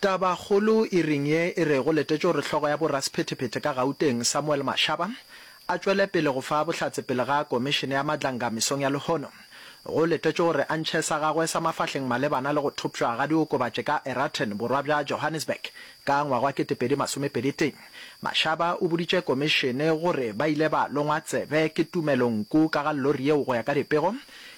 Tabakgolo e reng ye e rego letetšo gore hlogo ya borasephetephete ka Gauteng Samuel Mashaba a tšwele pele go fa bohlatse pele ga Komišene ya Madlanga mesong ya lehono? Go letetšwe gore a ntšhe sa gagwe sa mafahleng malebana le go thopšwa ga diokobatši ka Eraten borwa bja Johannesburg ka ngwaga wa kete pedi masome pedi tee. Mashaba o boditše Komišene gore ba ile ba longwa tsebe ke Tumelo Nku ka ga llori yeo go ya ka dipego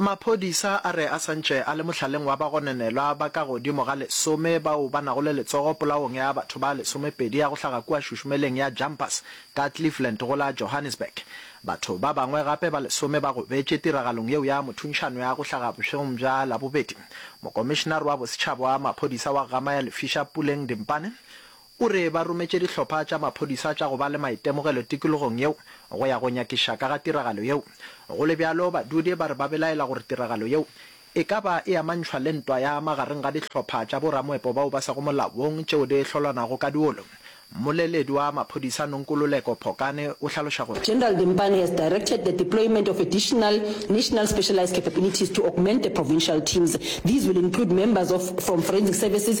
Maphodisa a re a santše a le mohlaleng wa bagonenelwa ba ka godimo ga lesome bao ba nago le letsogo polaong ya batho ba lesomepedi ya go hlaga kua šušumeleng ya Jumpers ka Cleveland go la Johannesburg. Batho ba bangwe gape ba lesome ba gobetše tiragalong yeo ya mothuntšhano ya go hlaga bošegong bja Labobedi. Mokomišenare wa Bosetšhaba wa Maphodisa wa Gama ya Lefisha Puleng Dimpane O re ba rometše dihlopha tša maphodisa tša go ba le maitemogelo tikologong yeo go ya go nyakiša ka ga tiragalo yeo. Go le bjalo, badudi ba re ba belaela gore tiragalo yeo e ka ba e amantšhwa le ntwa ya magareng ga dihlopha tša boramoepo bao ba sego molaong tšeo di hlolwanago ka diolo. Mmoleledi wa maphodisa Nonkululeko Phokane o hlaloša gore. General Dimpane has directed the deployment of additional National Specialized Capabilities to augment the provincial teams. These will include members of from Forensic Services,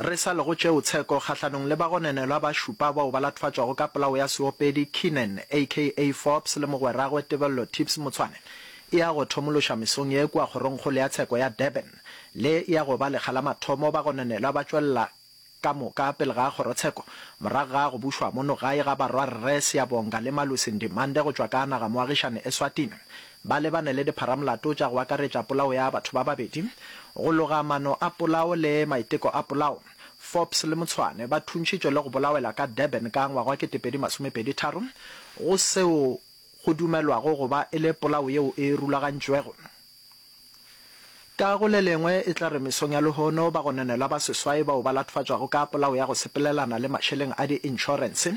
Re sa lego tšeo, tsheko kgahlanong le bagononelwa ba šupa bao ba latfatšwago ka polao ya seopedi Keenan aka Forbes le mogweragwe Tebello Tips Motshwane e ya go thomološa mesong ye kua kgorongkgolo ya tsheko ya Durban. Le e ya go ba lekga la mathomo bagononelwa ba tšwelela ka moka pele ga kgorotsheko morago ga go bušwa mono gae ga barwa Rre Siyabonga le Malusi Ndimande go tšwa ka nagamoagišane Eswatini. ba lebane le dipharamolato tša go akaretša polao ya batho ba babedi, go loga maano a polao le maiteko a polao. Forbes le Motshwane ba thuntšhitšwe le go bolawela ka Durban ka ngwagwakete pedi masome pedi tharo go seo go dumelwago go ba e le polao yeo e rulagantšwego. Ka go le lengwe, e tla re mesong ya lehono bagononelwa ba seswai bao ba latofatšwago ka polao ya go sepelelana le mašeleng a di-inšorense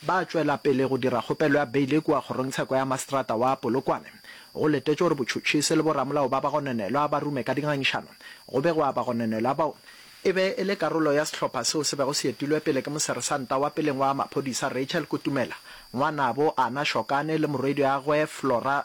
ba tšwela pele go dira kgopelo ya beile kua Kgorongtsheko ya Maseterata wa Polokwane, go letetšwe gore botšhotšhisi le boramolao ba bagononelwa ba rume ka dingangišano go begwa bagononelwa bao. E be e le karolo ya sehlopha seo se bego se etilwe pele ke Moseresanta wa peleng wa maphodisa Rachel Kutumela, ngwanabo Ana Shokane le morwediagwe Flora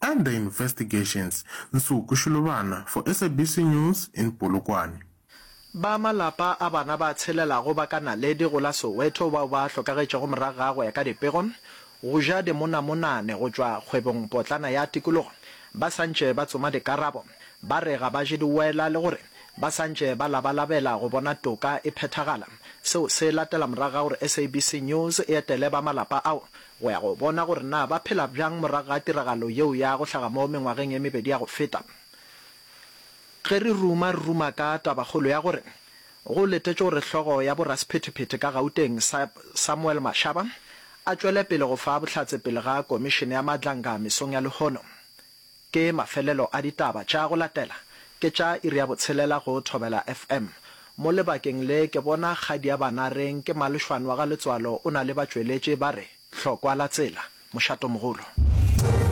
Under Investigations, Nsuku Shilobana for SABC News in Polokwane. Ba malapa a bana ba tshelelago ba ka naledi go la Soweto bao ba hlokagetšego morago ga go ya ka dipego go ja dimonamonane go tšwa kgwebong potlana ya tikologo ba santše ba tsoma dikarabo ba re ga ba je diwela le gore ba santše ba labalabela go bona toka e phethagala. Seo se latela morago ga gore SABC News e etele ba malapa ao go ya go bona gore na ba phela bjang morago ga tiragalo yeo ya go hlaga mo mengwageng e mebedi ya go feta. Ge re ruma, re ruma ka tabakgolo ya gore go letetšwe gore hlogo ya borasephetephete ka Gauteng, Samuel Mashaba, a tšwele pele go fa bohlatse pele ga Komišene ya Matlanga mesong ya lehono. Ke mafelelo a ditaba tša go latela ke tša iri ya botshelela go Thobela FM. Mo lebakeng le ke bona kgadi ya bana reng ke Malošwan wa ga Letswalo o na le batšweletši ba re Hlokwa la tsela, Mošatomogolo.